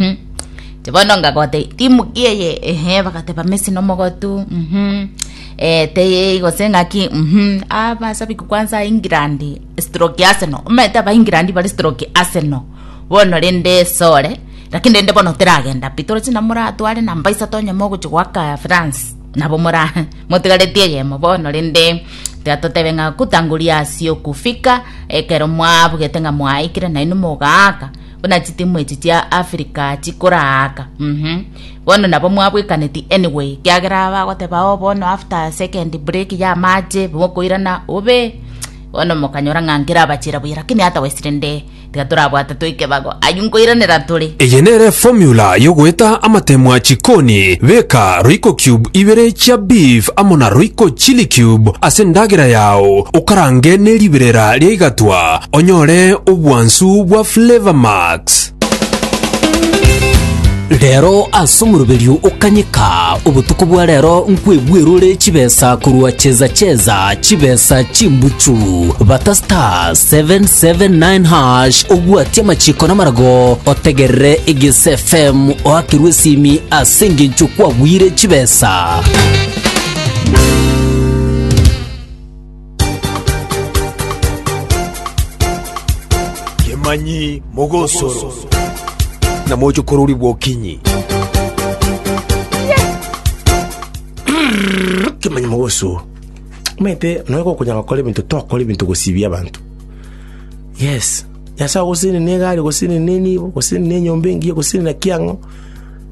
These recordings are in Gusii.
Mhm. Ti bono ngagote timuki eye ehe bagateba Messi nomogotu mhm. Eh, teye gose ng'aki mhm. Ah, basabiki kwanza England stroke Arsenal omanyete aba England bare stroke Arsenal bono rende sore lakini rende bono teragenda pi toroche na moratware namba isato onye mogochi goaka France nabo mora motigaretie eyemo bono rende tiga totebe ng'a kutangulia asio kufika ekero mwabugete ng'a mwaikire nainwe mogaaka Buna chitimu echi chia Africa chikoraaka mhm bono nabo mwabwekaneti anyway kiagera bagoteba oh bono after second break ya amache mokoirana obe bono mokanyora ng'a nkerabachira buya lakini hata wesirende tiga torabwate toikebago aywo nkoiranera tore Eye nere formula yogoeta amatemwa chikoni, beka royco cube ibere chia beef amo na royco chilli cube ase endagera yao okarange neriberera riaigatwa, onyore obwansu bwa Flavour Max. Rero ase omoroberio o kanyeka obotuko bwa rero nkwebwerore chibesa korwa Cheza Cheza chibesa chimbuchu bata star 779 hash obwatie amachiko namarago otegerere Egese FM oakerwe esimi ase engencho kwagwire chibesa. Kemanyi mogosoro. Na moche kororigwa okinyi. Kemanyi mogosoro. Omanyete nonya gokonyara gokora ebinto tokora ebinto gosibia abanto. Yes. Nyasae ogoseni ne egari ogoseni ne enibo ogoseni ne enyomba engiya ogoseni na kiang'o.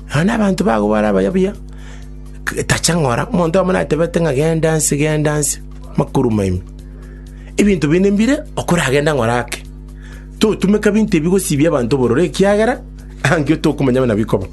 Nonya na abanto bago bare abayabuya. Tacha ng'ora, omonto oyomo natebete ng'a genda nse, genda nse, makuruma ime. Ebinto binde mbire, okoragende ng'ora ake. Totumeka binto ebi gosibia abanto obororo, ekiagera angio tokomanya buna bikoba.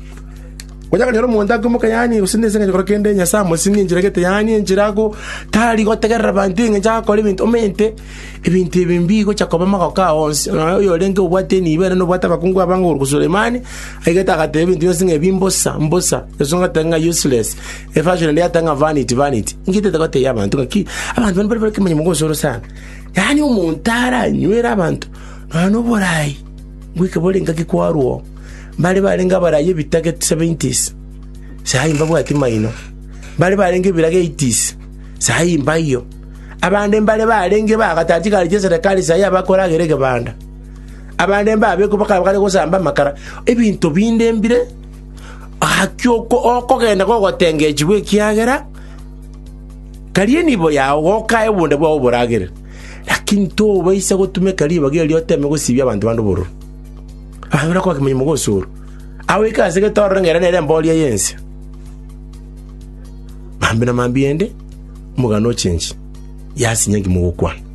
Onya konyora omonto akoimoka yaani gose nense engencho agokora kende Nyasae amosinge enchera egete yaani enchera ago tari gotegerera abanto engencho agakora ebinto omente ebinto ebi mbigocha koba magoko ao onsi. Nonya oyorenge obwate enibo ere nobwate abakungu abange okoruta Sulemani, aigete agateba ebinto bionsi ng'a ebi mbosa mbosa. Yeso agateba ng'a useless. Eversion ende yateba ng'a vanity, vanity. Inki etete goteebia abanto ng'a ki? Abanto bane bare nekemanyi mogosoro sana. Yaani omonto aranywere abanto nonya na oboraai bweka bore engaki kwarwa oo. Mbare barenge abarai ebitage seventies, sahi mbabwati maino. Mbare barenge ebirage eighties, sahi mbaiyo. Abande mbare barenge bagatari chigari chi'eserekari sahi abakora agere egebanda. Abande mbabekwa bakaba bakare gosamba amakara. Ebinto binde mbire. Gaki oko okogenda gogotengechigwa, ekiagera karia enibo yao gokae obonda bwao oboragere. Lakini tobaisa gotumeka ribaga erio oteme gosibia abanto bande obororo. Abanyora kwake monyene mogosoorwa, agoike ase getororo ng'ere nere embooria y'ense. Maambia na maambia eende, omogano ochenchie, yasinye nki mogokwana.